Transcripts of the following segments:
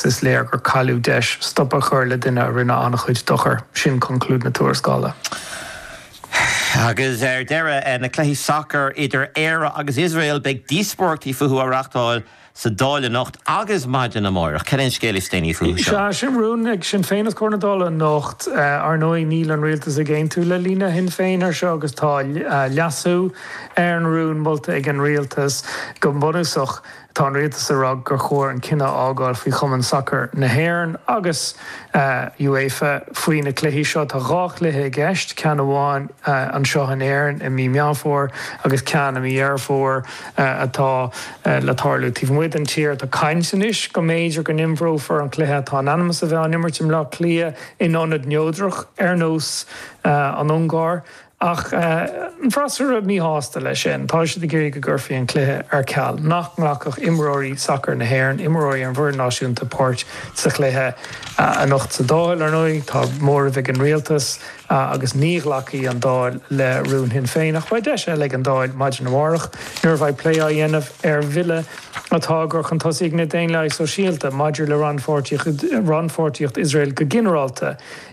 is léir gur cailleadh deis stop a chur le duine a rinne an-chuid dochair, sin conclúid na tuarascála. Agus ar deireadh, na cluichí sacair idir Éire agus Iosrael, beidh díospóireachtaí fúthu á reáchtáil sa Dáil anocht agus maidin amárach. Cad é an scéal is déanaí fúthu seo? Sea, sin rún ag Sinn Féin os comhair na Dála anocht. Ar ndóigh, níl an rialtas ag aontú le líne Shinn Féin air seo agus tá leasú ar an rún molta ag an rialtas go bunúsach. Tá an rialtas ag rá gur chóir an cinneadh a fhágáil faoi Chumann Sacair na hÉireann agus UEFA faoi na cluichí seo. Tá dhá chluiche i gceist, ceann amháin anseo in Éirinn i mí Meán Fómhair agus ceann i mí Dheireadh Fómhair atá le tarlú taobh amuigh den tír. Tá caint anois go mb'fhéidir go n-imreofar an cluiche atá in ainm is a bheith á n-imirt i mBleá Cliath in ionad neodrach ar nós an Ungáir. Ach an freasúra míshásta leis sin. Tá siad ag iarraidh go gcuirfí an cluiche ar ceal, nach nglacfadh imreoirí sacair na hÉireann, imreoirí an bhfoireann náisiúnta páirt sa chluiche. Anocht sa Dáil, ar ndóigh, tá móramh ag an rialtas agus ní ghlacfaidh an Dáil le rún Shinn Féin. Ach beidh deis eile ag an Dáil maidin amárach nuair a bheidh plé á dhéanamh ar bhille atá á gcur chun tosaigh ag na Daonlathaigh Shóisialta maidir le rannpháirtíocht Iosrael go ginearálta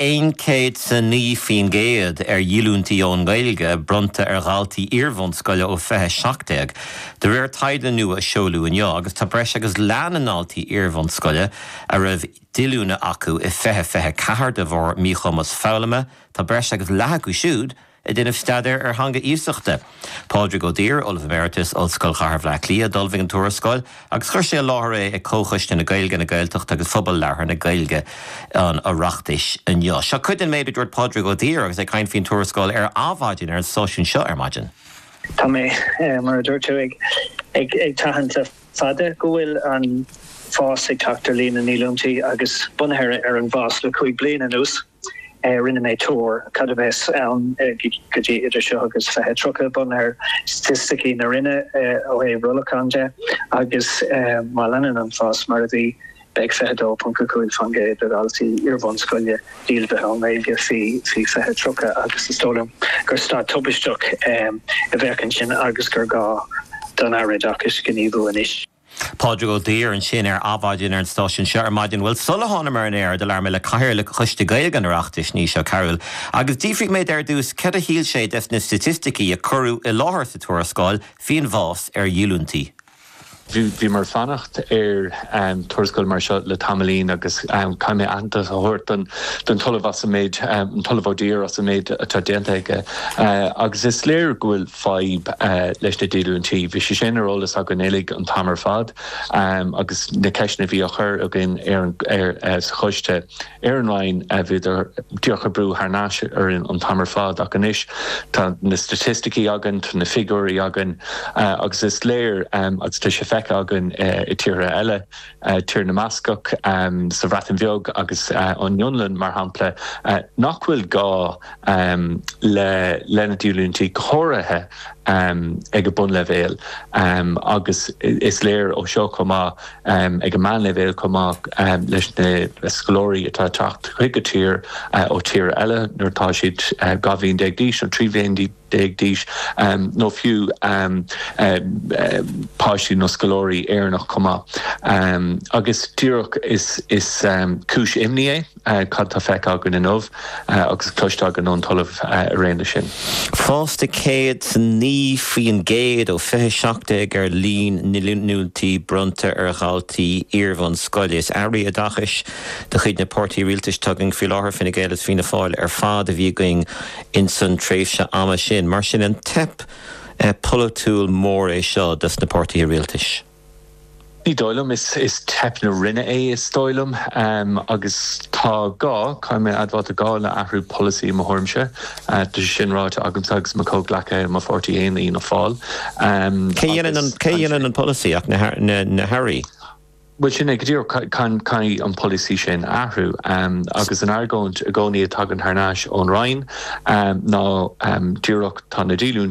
aon chéad is a naoi faoin gcéad ar dhíolúintí ón nGaeilge bronnta ar dhaltaí iarbhunscoile ó 20 17, de réir taighde nua a seoladh inniu, agus tá breis agus leath na ndaltaí iarbhunscoile a raibh díolúine acu i 20 24 de bharr míchumas foghlama, tá breis agus leath acu siúd a. ag déanamh staidéir ar theanga iasachta. Pádraig Ó Duibhir, Ollamh Emeritus, Ollscoil Chathair Bhleá Cliath, d'ullmhaigh an tuarascáil agus chuir sé i láthair é ag Comhchoiste na Gaeilge, na Gaeltachta agus Phobal Labhartha na Gaeilge an Oireachtais inniu. Seo cuid den méid a dúirt Pádraig Ó Duibhir agus é ag caint faoin tuarascáil ar Adhmhaidin ar an stáisiún seo ar maidin. Tá mé, mar a dúirt tú, ag tathant le fada go bhfuil an fás ag teacht ar líon na ndíolúintí agus bunaithe ar an bhfás le cúig bliana anuas, Rinne mé tuar cad a bheas ann go dtí idir seo agus 2030, bunaithe ar staitisticí na Roinne ó thaobh rollacháin de, agus má leanann an fás mar a bhí, beidh 22.5 faoin gcéad de dhaltaí iarbhunscoile díolmhaithe ón nGaeilge faoi 2030 agus is dóigh liom gur staid tubaisteach a bheadh ansin agus gur gá don Aire Oideachais gníomhú anois. Pádraig Ó Duibhir ansin ar Adhmhaidin ar an stáisiún seo ar maidin. Bhuel, sula thánam ar an aer, do labhair mé le Cathaoirleach Choiste Gaeilge an Oireachtais, Naoise Ó Cearúil, agus d'fhiafraigh mé de ar dtús cad a shíl sé des na staitisticí a cuireadh i láthair sa tuarascáil faoin bhfás ar dhíolúintí. Bhí mé ag fanacht ar tuarascáil mar seo le tamaillín agus caithfidh mé aitheantas a thabhairt don tOllamh as an méid, an tOllamh Ó Duibhir as an méid atá déanta aige agus is léir go bhfuil fadhb leis na díolúintí. Bhí sé sin ar eolas againn uilig an t-am ar fad agus na ceisteanna a bhí á chur againn sa choiste ar an Roinn, bhíodar díreach ag brú thar n-ais orainn an t-am ar fad ach anois tá na staitisticí againn, tá na figiúirí againn agus is léir agus tá sé feicthe againn i dtíortha eile. Tír na mBascach sa Bhreatain Bheag agus an Fhionlainn, mar shampla, nach bhfuil gá leis na díolúintí, go háirithe ag an mbunleibhéal, agus is léir ó seo chomh maith ag an meánleibhéal chomh maith leis na scoláirí atá ag teacht chuig an tír ó thíortha eile nuair atá siad dhá bhliain déag d'aois nó trí bhliain déag d'aois, nó fiú páistí nó scoláirí Éireannach chomh maith. Agus díreach is cúis imní é cad tá feicthe againn inniu agus cloiste againn ón tOllamh araon leis sin. Fás de céad sa naoi faoin gcéad ó fiche a seacht déag ar líon na ndíolúintí bronnta ar dhaltaí iarbhunscoile. Is airí oideachais de chuid na páirtithe rialtais, tá a fhios againn faoi láthair Fine Gael agus Fianna Fáil ar fad, a bhí againn ins an tréimhse ama sin. Mar sin an teip polaitiúil mór é seo dos na páirtithe rialtais? Ní dóigh liom. Is teip na Roinne é is dóigh liom agus tá gá, caithfidh mé a admháil, tá gá le athrú polasaí i mo thuairimse. Tá sé sin ráite agamsa agus mo comhghleacaithe i mo pháirtí fhéin, Fianna Fáil, agus. Cé dhéanann an polasaí ach na hAirí? bhuel sin é go díreach, caithfidh an polasaí sin athrú. Agus an argóint i gcónaí a tagann thar n-ais ón Roinn ná díreach tá na díolúintí,